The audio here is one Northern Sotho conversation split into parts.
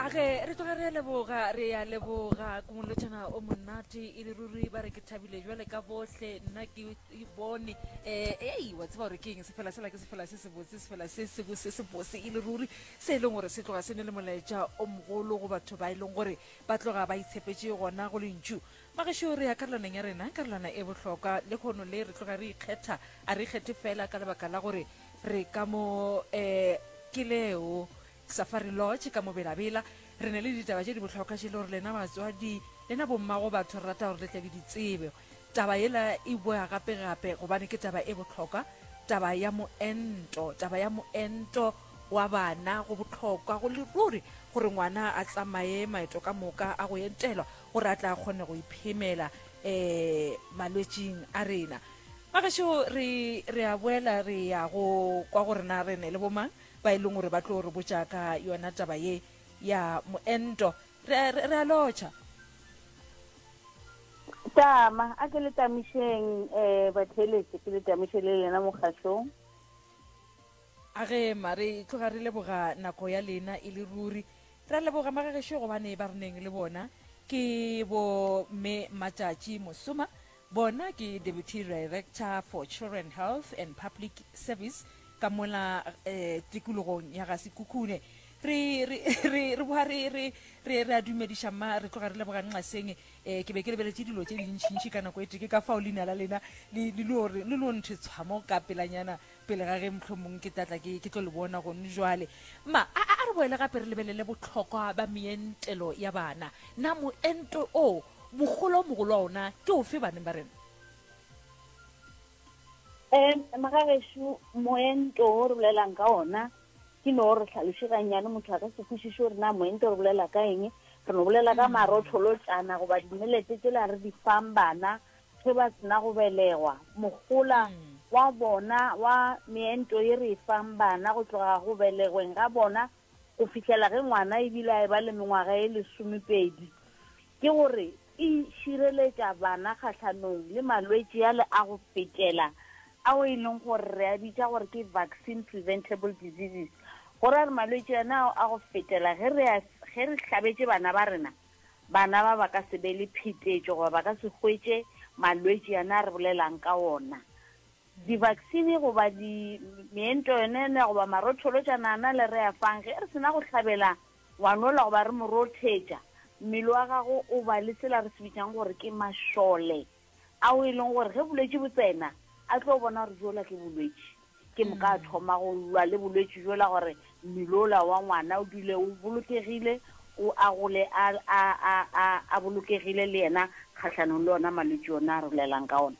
a ge re tloga re leboga re ya leboga kumolotšana o monate e le ruri ba re ke thabile jwale ka bohle nna ke e bone um ei wa tseba gore ke eng sefela sela ke sefela se sebotse sefela se sebo se sebose e le ruri se e leng gore se tloga se ne le molaetša o mogolo go batho ba e leng gore ba tloga ba itshepetse gona go lentšu magešo re ya karolaneng ya rena karolana e bohlokwa le kgono le re tloga re ikgetha a re ikgethe fela ka lebaka la gore re ka mo um ke leo safari lodge ka mo belabela re ne le ditaba tše di bohlokwa tše le gore lena batswadi lena bommago batho re rata gore le tlabe ditsebe taba yela e boya gape gape gobane ke taba e bohlokwa taba ya moento taba ya moento wa bana go bohlokwa go le ruri gore ngwana a tsamaye maeto ka moka a go entelwa gore a tla kgone go iphemela um malwetsing a rena Bagešo, re, re a boela re ya go kwa gore na re ne le bomang ba e leng gore ba tlo re botša ka yona taba ye ya moento. Re a, re, re a lotšha. Tama, a ke le tamišeng, eh, batheeletše, ke le tamiše le lena mokgašong. A gema, re tloga re leboga nako ya lena e le ruri. Re a leboga, magagešo, gobane ba re neng le bona ke bo Mme Matšatši Mosoma, Bona ke Deputy Director for Children Health and Public Service ka mola tikologong ya ga Sekhukhune. Re, re, re, re boa re, re, re, re a dumediša mma, re tloga re leboga Nxaseng. Eh, ke be ke lebeletše dilo tše dintšintši ka nako e tee, ke ka fao leina la lena le, le, le, le lo nthitshwa mo ka pelanyana. pele ga ge mohlomong ke tatla ke ke tlo le bona gone jwale ma a, a, a re boele gape re lebelele botlhokwa ba meentelo ya bana na moento o mogolo o mogolo wa ona ke o fe baneng ba rena um magagešu moento o re bolelang ka ona ke no re tlhaloše gannyane motho a ka se kwešiše gore na moento re bolela ka eng re no bolela ka mm. marotholotsana goba dimelete tsela re di fang bana ge ba se na go belegwa. Mohola wa bona wa meento ye re e fang bana go tloga go belegweng ga bona go fihlela ge ngwana e bile a eba le mengwaga e lesomepedi ke gore e šireletša bana kgahlanong le malwetši ale a go fetela ao e leng gore re a bitša gore ke vaccine preventable diseases, go ra re malwetši ana ao a go fetela ge re hlabetše bana ba rena. Bana ba ba ka se be le phetetšo goba ba ka se hwetše malwetši yane a re bolelang ka wona. Divaksini goba di, meento yone ena goba marotholotšana ana le re a fang, ge re sena go hlabela ngwanola goba re mo rothetša, mmele wa gagwe o ba le sela re se bitšang gore ke mašole. ao e leng gore ge bolwetši bo tsena a tlo bona gore jola ke bolwetši ke moka a thoma go lwa le bolwetši jola gore mmele ola wa ngwana o dule o bolokegile o a gole a, a, a, a, a bolokegile le yena kgatlhanong le ona malwetši ona a rolelang ka ona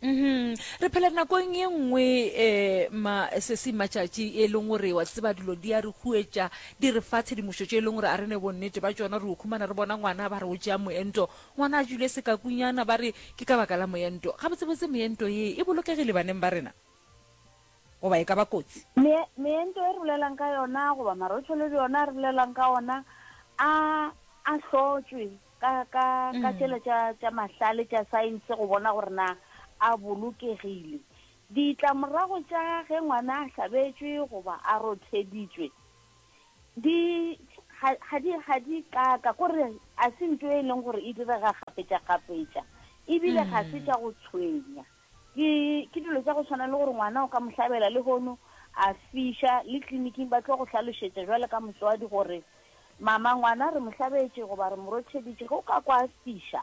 Mm re phela nakong ye nngwe eh ma sesi matšatši e leng gore wa tseba dilo di a re huetša di re fa tshedimošo tše e leng gore a re ne bonnete ba tšona re o khumana re bona ngwana ba re o tšea moento Ngwana a dule sekakunyana, ba re ke ka baka la moento. Gabotsebotse meento ye e bolokegile baneng ba rena? Goba e ka ba kotsi? Meento e re bolelang ka yona goba marotšhole bjona a re bolelang ka ona a a hlotšwe ka ka ka tšela tša tša mahlale tša saense go bona gore na a bolokegile. Ditlamorago tša ge ngwana a hlabetšwe goba a rotheditšwe di ga ga di ga di kaka kore a se nto e leng gore e direga gapetša gapetša ebile ga se tša go tshwenya ke ke dilo tša go tshwana le gore ngwana o ka mo hlabela le hono a fiša le tleliniking ba tlo go hlalošetša jwale ka motswadi gore mama ngwana re mo hlabetše goba re mo rotheditše ge o ka kwa fiša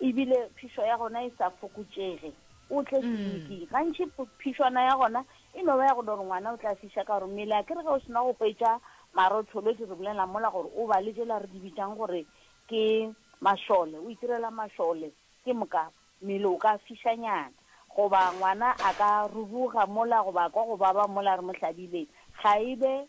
ebile phišo ya gona e sa fokotšege o tle mm. tleliniking gantšhi phišwana ya gona e no ba ya go dore ngwana o tla fiša ka gore mmele a kere ge o sena go hwetša marotholo di re bolela mola gore o ba le jela re di bitšang gore ke mašole o itirela mašole ke moka mmele o ka fišanyana goba ngwana a ka rubuga mola goba kwa go baba mola re mo hlabile ga e be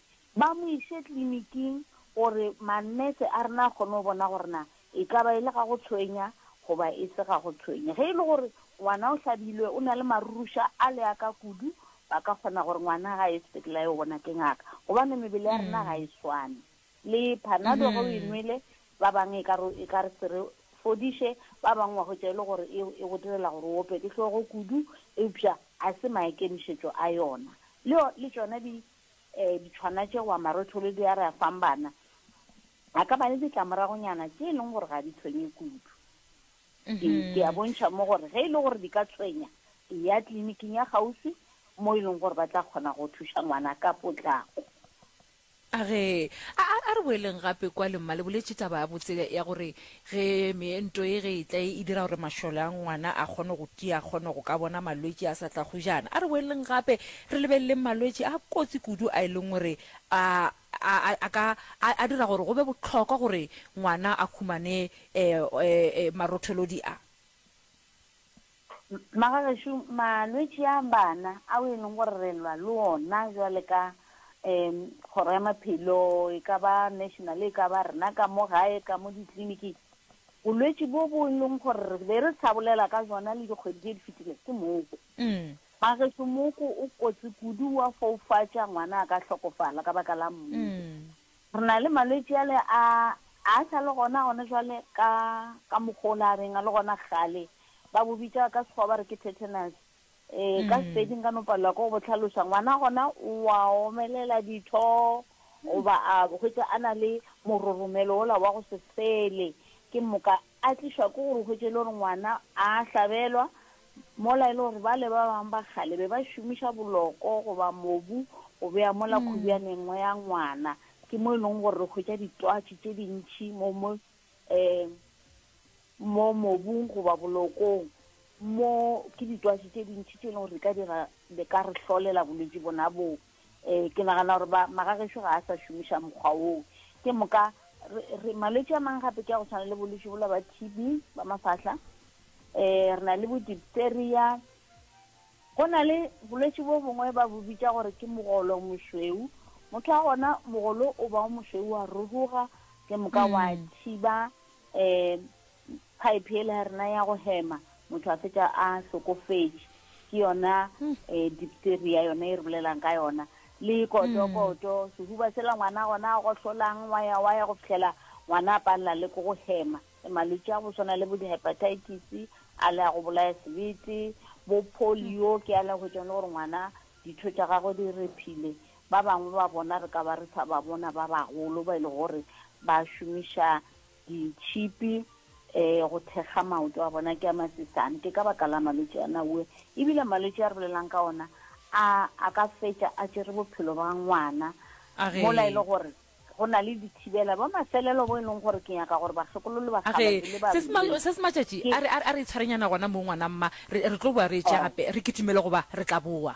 ba mo iše kliniking gore manese a rena a kgone go bona gore na e ka ba e le ga go tshwenya goba e se ga go tshwenya. Ge e le gore ngwana o hlabilwe o na le maruruša a le a ka kudu, ba ka kgona gore ngwana ga a ye sepetlele a yo bona ke ngaka gobane mebele ya rena ga e swane. Le Panado ge o e nwele ba bang e ka re e ka re se re fodiše, ba bang wa hwetša e le gore e e go direla gore o ope ke hlogo kudu eupša ga se maikemišetšo a yona. Le le tšona di Ditshwana tše goba marotholo di a re a fang bana a ka ba le ditlamoragonyana tše e leng gore ga di tshwenye kudu. Ke ke a bontšha mo gore ge e le gore di ka tshwenya, e ya tleliniking ya kgauswi mo e leng gore ba tla kgona go thuša ngwana ka potlako. A re, A, a, a re boeleng gape kwale, mma le boletše taba ya botse ya gore Ge meento ye ge e tla e dira gore mašole a ngwana a kgone go tia, a kgone go ka bona malwetši a sa tla go jana. A re boeleleng gape re lebeleleng malwetši a kotsi kudu a e leng gore a a a ka a a dira gore go be bohlokwa gore ngwana a humane e e marotholodi a. Magagešo, malwetši a bana ao e leng gore re lwa le ona jwale ka um Kgoro ya Maphelo, e ka ba national, e ka ba rena ka mo gae, ka mo ditliliniking, bolwetši bo bo e leng gore re be re sa bolela ka jona le dikgwedi tše di fetilego ke moko. Magagešo, moko o kotsi kudu, wa foufatša, ngwana a ka hlokofala ka baka la moko. Re na le malwetši ale a a sa le gona gona jwale ka ka mokgwa o le a beng a le gona kgale. Ba bo bitša ka Sekgowa ba re ke tetanus. Um ka Sepedi nka no palelwa ke go bo tlhaloša. Ngwana gona o a omelela ditho goba a hwetša a na le mororomelo ola wa go se fele. Ke moka A tlišwa ke gore o hwetše e le gore ngwana a hlabelwa, mola e le gore bale ba bangwe ba kgale be ba šomiša boloko goba mobu go bea mola khubjane nngwe ya ngwana. Ke mo e lego gore re hwetša ditwatši tše dintši mo mo um mo mobung goba bolokong. Mo ke ditwatši tše dintši tše e lego gore di ka dira di ka re hlolela bolwetši bona boo. Ee, ke nagana gore ba magagešo ga a sa šomiša mokgwa woo. Ke moka re, re malwetši a mang gape ke a go tshwana le bolwetši bola ba TB ba mafahla. Eh, re na le bo diphtheria. Go na le bolwetši bo bongwe ba bo bitša gore ke mogolo mošweu. Motho wa gona mogolo o ba o mošweu wa ruruga ke moka wa mm. thiba eh Pipe yela ya rena ya go hema motho a fetša a hlokofetše ke yona um dipteria yona e re bolelang ka yona le kotokoto hmm. sehuba sela ngwana gona a gohlolang wa ya wa ya go fitlhela ngwana a palela le ko go hema e malwetse a go swana le bo di-hepatitis a le a go bolaya sebete bo polio ke a le go tsone gore ngwana ditho tša gagwe di re phile ba bangwe ba bona re ka ba re sa ba bona ba bagolo ba e le gore ba šomiša ditšhipi um go thekga maoto a bona ke a masesane ke ka baka la malwetse a naue ebile malwetse a re bolelang ka ona a a ka fetša a tšere bophelo ba ngwana mola e le gore go na le dithibela ba mafelelo bo e leng gore ke nyaka gore bakgekololo ba se se matšatši a re itshwarenyana gona mo ngwana mma re tlo boa re etše gape re kitimele goba re tla boa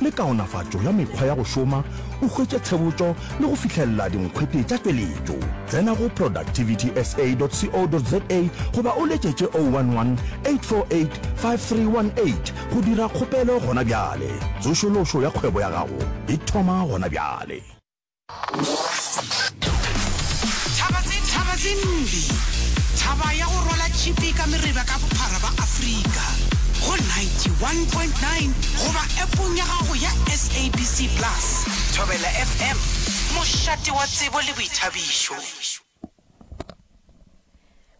le kaonafatšo ya mekgwa ya go šoma, o hwetše tshebotšo le go fihlelela dinkgwete tša tšweletšo. Tsena go productivitysa.co.za goba o letšetše 011 848 5318 go dira kgopelo gona bjale. Tsošološo ya kgwebo ya gago e thoma gona bjale. Thaba ya go rwala tšhipi ka mereba ka bophara ba Afrika go 91.9 goba appong ya gago ya SABC Plus. Thobela FM, mošate wa tsebo le boithabišo.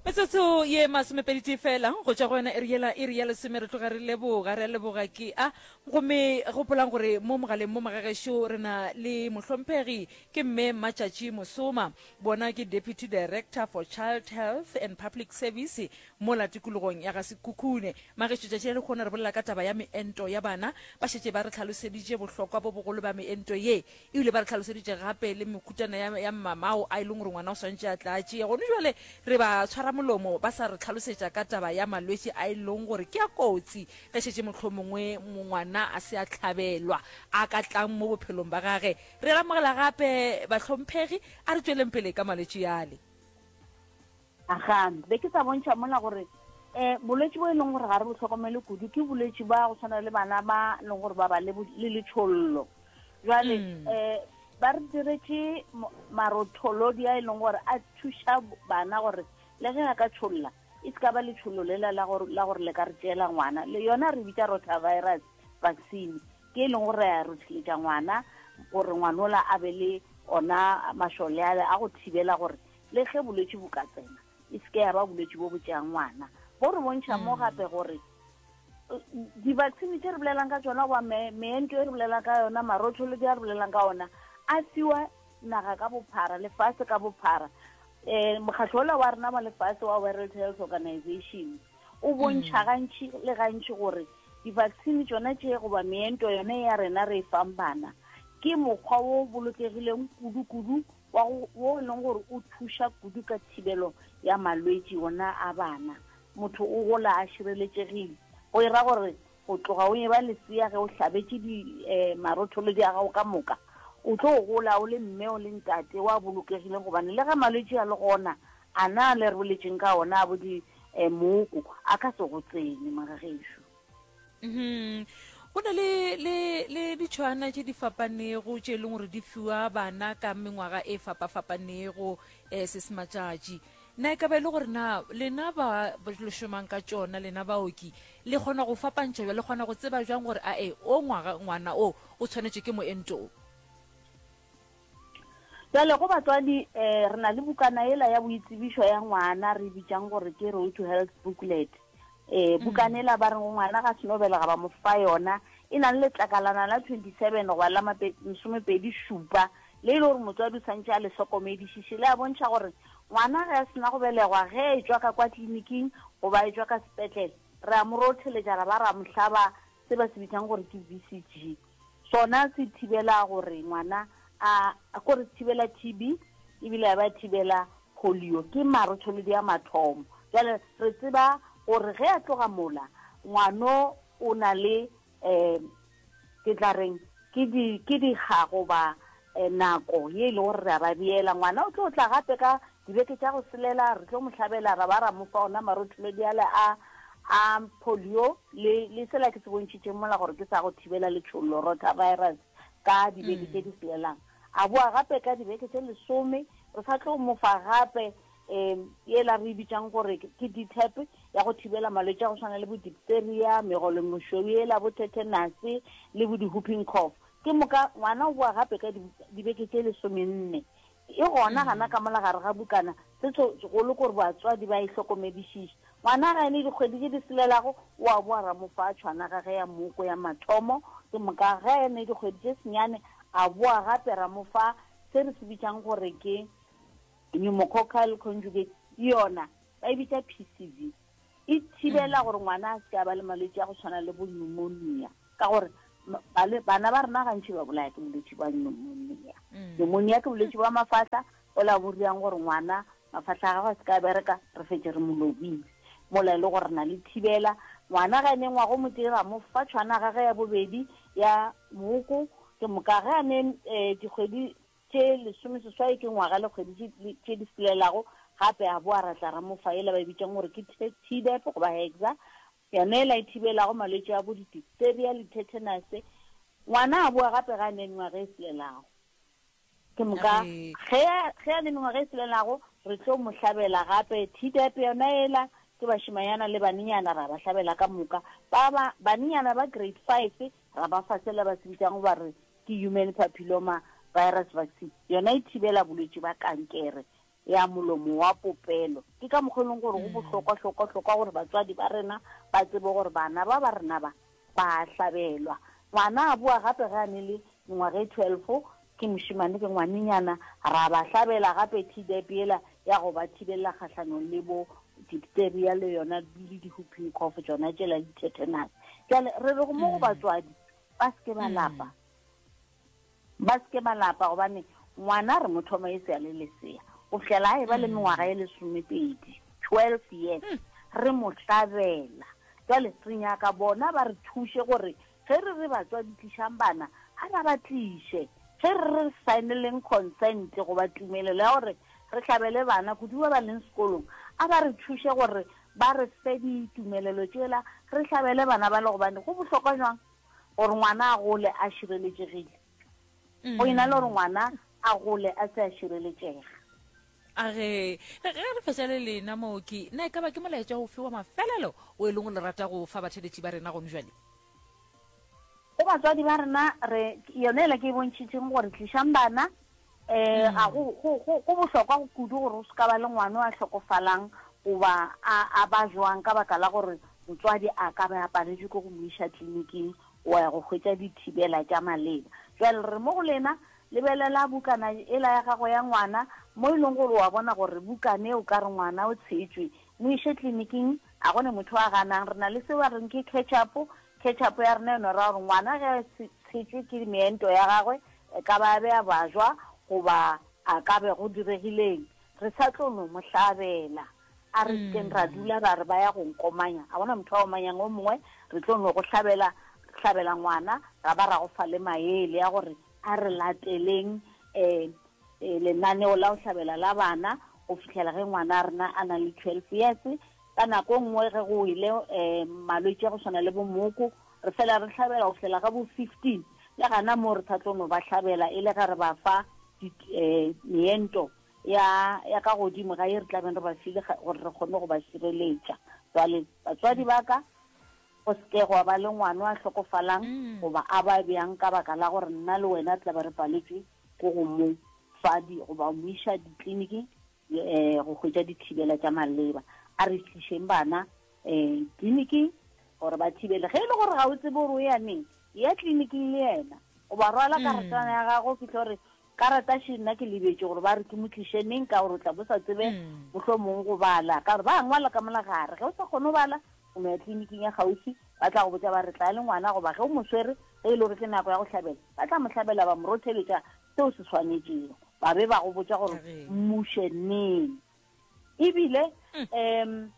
metsotso ye masomepedi tee fela go tšwa go yona ere yela ere ya lesome re tloga re leboga re a leboga ke a gomme gopolang gore mo mogaleng mo magagešo re na le mohlomphegi ke mme matšatši mosoma bona ke deputy director for child health and public service mo la tikologong ya ga sekhukhune magešo tšatši le lekgona re bolela ka taba ya meento ya bana ba šetše ba re tlhaloseditše bohlokwa bo bogolo ba meento ye E bile ba re hlaloseditše gape le mehutana ya, ya mamao a e leng gore ngwana o swantše a tla a tšea. Gone bjale re ba tshwara molomo ba sa re hlalosetša ka taba ya malwetši a e leng gore ke a kotsi ge šetše mohlomongwe ngwana a se a hlabelwa a ka tlang mo bophelong ba gage. Re amogela gape, bahlomphegi, a re tšweleng pele ka malwetši ale. Aga, be ke sa bontšha mola gore eh bolwetši bo e leng gore ga re bo hlokomele kudu ke bolwetši ba go tshwana le bana ba leng gore ba ba le le letshollo jwale mm. eh ba re diretše marotholodi a e leng gore a thuša bana gore le ge a ka tšholla e se ka ba letšhollo le la gore le ka re tšeela ngwana le yona re bitša rotavirus vaccine ke e leng gore ya rothiletša ngwana gore ngwanola a be le ona mašole ale a go thibela gore le ge bolwetši bo ka tsena e seke ya ba bolwetši bo bo tšeang ngwana bo re bontšha mo mm. gape gore di-vaccine tše re bolelang ka tsona goba meento e re bolelang ka yona marotholo di a re bolelang ka ona a fiwa naga ka bophara lefase ka bophara um mokgatlho ola wa rena wa lefase wa world health organization o bontšha mm. gantšhi le gantšhi gore di-vaccine tsona tše goba meento yone ya rena re e fang bana ke mokgwa o bolokegileng kudu-kudu wa go, wo e leng gore o thuša kudu ka thibelo ya malwetši wona a bana. Motho o gola a šireletšegile, go e ra gore go tloga o eba lesea ge o hlabetše di, um marotholodi a gago ka moka, o tlo gola o le mme o le ntate wa bolokegile gobane le ge malwetši a le gona a na le re boletšeng ka ona a bo di, um mooko a ka se go tsene, mara gešo. Hmm. go na le le le ditšhwana tše di fapanego tše e leng gore di fiwa bana ka mengwaga e fapafapanego um se se matšatši na e ka ba e le gore na lena ba le šomang ka tšona lena baoki le kgona go fapantšha bja le kgona go tseba jang gore ae o ngwaga ngwana o o tshwanetše ke moento o Bjale, go batswadi, e, re na le bukana yela ya boitsebišo ya ngwana re e bitšang gore ke Road to Health Booklet. E, mm. bukana yela ba reng ngwana ga seno belega ba mo fa yona, e na le letlakalana la 27 goba la masomepedi šupa, le e le gore motswadi o santše a le hlokomedišiše, le a bontšha gore ngwana ge a sena go belegwa, ge e tšwa ka kwa tliliniking goba e tšwa ka sepetlele, re a mo rotheletša ra ba ra mo hlaba se ba se bitšang gore ke VCG. Sona se thibela gore ngwana a, ko re thibela TB, ebile ya ba thibela polio. Ke marotholodi a mathomo. Jale re tseba gore ge a tloga mola, ngwano o na le, um ke tla reng, ke di, ke dikga goba Nako ye e lego gore re a ba beela ngwana o tlo tla gape ka dibeke tša go selela, re tlo mo hlabela ra ba ra mo fa ona marothulodi ale a a polio le le sela ke se bontšhitšeng mola gore ke sa go thibela letšhollo, rotavirus, ka dibeke tše di selelang. A boa gape ka dibeke tše lesome, re sa tlo mo fa gape um yela re e bitšang gore ke DTaP ya go thibela malwetši a go swana le bo diphtheria, megolomošweu yela, bo tetanus le bo di-whooping cough. Ke moka, ngwana o boa gape ka dibuka, dibeke tše lesomenne. E gona gana ka mola gare ga bukana, se tso, golo kore batswadi ba e hlokomedišiše. Ngwana ga e ne dikgwedi tše di selelago, o a boa ra mo fa tšhwana ga ge ya moko ya mathomo. Ke moka, ga e ne dikgwedi tše senyane, a boa gape ra mo fa se re se bitšang gore ke pneumococcal conjugate, yona ba e bitša PCV. E thibela gore ngwana a se ke a ba le malwetši a go tshwana le bo pneumonia. Ka gore bana ba rena gantši ba bolaya ke bolwetši bwa pneumonia. Mm. Pneumonia ke bolwetši bwa mafahla o la boriang gore ngwana mafahla a gagwe a se ka bereka re fetse re mo lobile mola e le gore na le thibela ngwana ga ene ngwago mo tee ra mo fa tshwana gage ya bobedi ya moko ke moka ge a ne um eh, dikgwedi tše lesome seswai ke ngwaga le kgwedi tše di selelago gape a boa ra tla ra mo fa e le ba e bitsang gore ke tdep goba hexa Yona yela e thibelago malwetši a bo di-diphtheria le tethenase, ngwana a boa gape ge a ne mengwaga e selelago. Ke moka ge, ge a ne mengwaga e selelago, re tlo mo hlabela gape. Tdap yona yela, ke bašemanyana le banenyana ra ba hlabela ka moka. Ba, ba, banenyana ba grade five ra ba fa sela ba se bitšago ba re ke human papilloma virus vaccine, yona e thibela bolwetši ba kankere. ya molomo wa popelo. Ke ka mokgwa e leng gore go bohlokwa hlokwa hlokwa gore batswadi ba rena ba tsebe gore bana ba ba rena ba ba hlabelwa. Ngwana a boa gape ge a ne le mengwaga e 12 ke mošemane ke ngwanenyana, ra ba hlabela gape Tdap yela ya go ba thibelela kgahlanong le bo diphtheria le yona le di-whooping cough tsona tšela di-tetanus. Bjale re re go mo go batswadi ba se ke ba lapa Ba se ke ba lapa gobane ngwana re mo thoma e se a le lesea go fihlela a e ba le mengwaga e lesomepedi, 12 years, hmm. re mo hlabela. Jwale re nyaka bona ba re thuše gore ge re re batswadi tlišang bana a ba ba tliše ge re re signeleng consent goba tumelelo ya gore re hlabele bana kudu ba ba leng sekolong a ba re thuše gore ba re fe ditumelelo tšela re hlabele bana ba le gobane go bohlokwa jwang gore ngwana a gole a šireletšegile go ena le gore ngwana a gole a se a šireletšega a ge ge re fetša le lena mooki na e ka ba ke molaetša ofe wa mafelelo o e leng o le rata go fa batheletši ba rena gone jale go batswadi ba rena re yone ela ke e bontšhitšeng gore tlišang bana Ee, ga go, go, go, go bohlokwa go kudu gore o se ka ba le ngwana o a hlokofalang goba a, a ba jwang ka baka la gore motswadi a ka be a paletšwe ke go mo iša tliliniking wa ya go hwetša dithibela tša maleba. Bjale re re mo go lena, lebelela bukana ela ya gago ya ngwana, mo e leng gore o a bona gore bukana e o ka re ngwana o tshetšwe. Mo iše tliliniking, a go ne motho a ganang. Re na le seo ba reng ke ketchup, ketchup ya rena yona e ra gore ngwana ge a tshetšwe ke meento ya gagwe, E ka ba a be a bajwa goba a ka be go diregileng, re sa tlo no mo hlabela. A re sekeng ra dula ra re ba ya go nkomanya, ga gona motho a omanyang o mongwe. Re tlo no go hlabela, hlabela ngwana, ra ba ra go fa le maele a gore a re lateleng um lenaneo la go hlabela la bana go fihlela ge ngwana a rena a na le twelve years. Ka nako e nngwe ge go wele um malwetši a go swana le bo mooko, Re fela re hlabela go fihlela ga bo 15, le gana moo re sa tlo no ba hlabela e le ge re ba fa meento ya ya ka godimo ga ye re tlabeng re ba file gore re kgone go ba šireletša. Jwale batswadi ba ka, go se ke gwa ba le ngwano a hlokofalang mm. goba a ba bjang ka baka la gore nna le wena re tlabe re paletšwe ko go mo fa goba mo iša ditleliniking um go hwetša dithibela tša maleba. A re tlišeng bana um tliliniking gore ba thibele. Ge e le gore ga o tsebe gore o ya neng, ya tliliniking le yena o ba rwala mm. karatana ya gago fitlhe gore karata she nna ke lebetse gore ba re ke motliše neng ka gore o tla bo sa tsebe mm. motlho mongwe go bala ka gore ba ngwala ka mola gare ge o sa kgone go bala o no ya tleliniking ya gaufi ba tla go botsa ba re tla le ngwana goba ge o moswere ge e le gore ke nako ya go hlabela ba tla mo hlabela ba morotheletša seo se swanetšego ba be ba go botša gore mmuše neng ebile um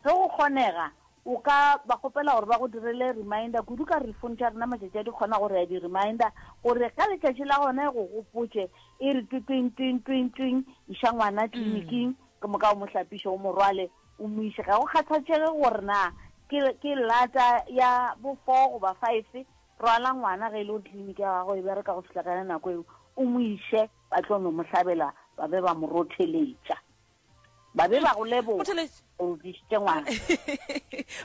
ge go kgonega o ka ba kgopela gore ba go direle reminder kudu ka re fone tša rena matšatši a di kgona gore ya di-reminder gore ka letšatši la gone go gopotše e re twitwing twing twing twing iša ngwana tleliniking ke moka o mo hlapiše o morwale o mo ise ga go kgathatšege gore na ke lata ya bofoo goba five Rwala ngwana ge e le gore kliniki ya gago e bereka go fihla ka yona nako eo, o mo iše ba tlo no mo hlabela ba be ba mo rotheletša. Ba be ba go leboga Rotheletša? gore o tlišitše ngwana.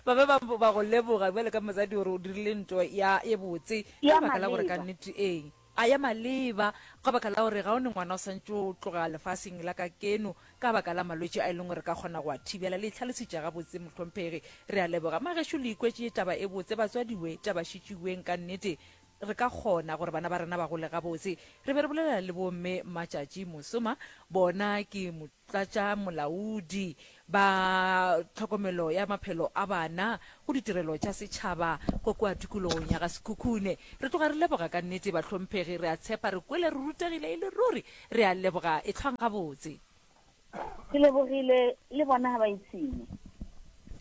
ba be ba ba go leboga bjale ka mosadi gore o dirile nto ya e botse Ya ka lebaka la gore ka maleba. nnete ee A ya maleba, ka baka la gore ga o ne ngwana o santše o tloga lefaseng la ka keno ka baka la malwetši a e leng gore ka kgona go a thibela. Le e hlalositše gabotse, mohlomphegi. Re a leboga. Magešu le ikwetše taba e botse, batswadiwe, taba šitšiweng ka nnete. Re ka kgona gore bana ba rena ba gole gabotse. Re be re bolela le bo Mme Matšatši mosoma, bona ke. tsa tša molaodi, ba tlhokomelo ya maphelo a bana, go ditirelo tša setšhaba go kua tikologong ya ga Sekhukhune. Re tloga re leboga ka nnete bahlomphegi, re a tshepa re kwele re rutegile e le ruri. Re a leboga, ehlwang gabotse. Ke lebogile, le bona ga ba ipshine.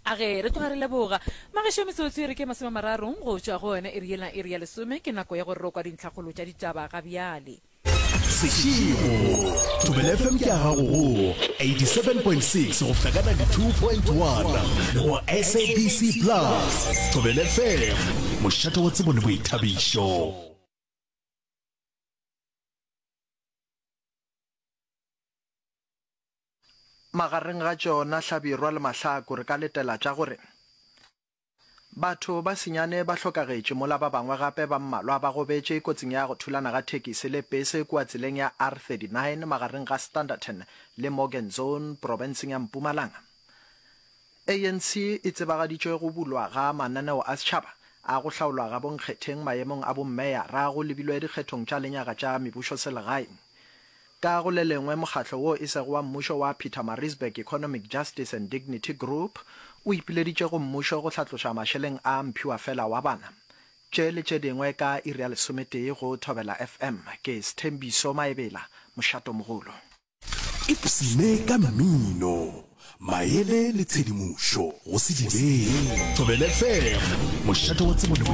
A ge re tloga re leboga. Magešo metsotso e re ke masome a mararong go tšwa go yona iri yela iri ya lesome, ke nako ya gore ro kwa dintlhakgolo tša ditaba ga bjale. sešego tobele fm ke a gago go 87.6 go fihla ka 92.1 le go sabc plus tobele fm mošate wa tsebo le boithabišo magareng ga tšona hlabirwa le mahlaku re ka letela tša gore Batho ba senyane ba hlokagetše mola ba bangwe gape ba mmalwa ba gobetše kotsing ya go thulana ga thekisi le pese kua tseleng ya R39 magareng ga Standerton le Morgan Zone profenseng ya Mpumalanga. ANC e tsebagaditše go bulwa ga mananeo a setšhaba a go hlaolwa ga bonkgetheng maemong a bommeyara go lebilwe dikgethong tša lenyaga tša mebušoselegaeng Ka go le lengwe, mokgatlo wo e sego wa mmušo wa Pietermaritzburg Economic Justice and Dignity Group o ipileditše go mmušo go hlatloša mašeleng a mphiwafela wa bana. Tše le tše dingwe ka iri ya lesometee go Thobela FM. Ke Sthembiso Maebela, mošatomogolo. Ipshine ka mmino, maele le tshedimošo go se direge. Thobela FM, mošate wa tsebo le boithuto.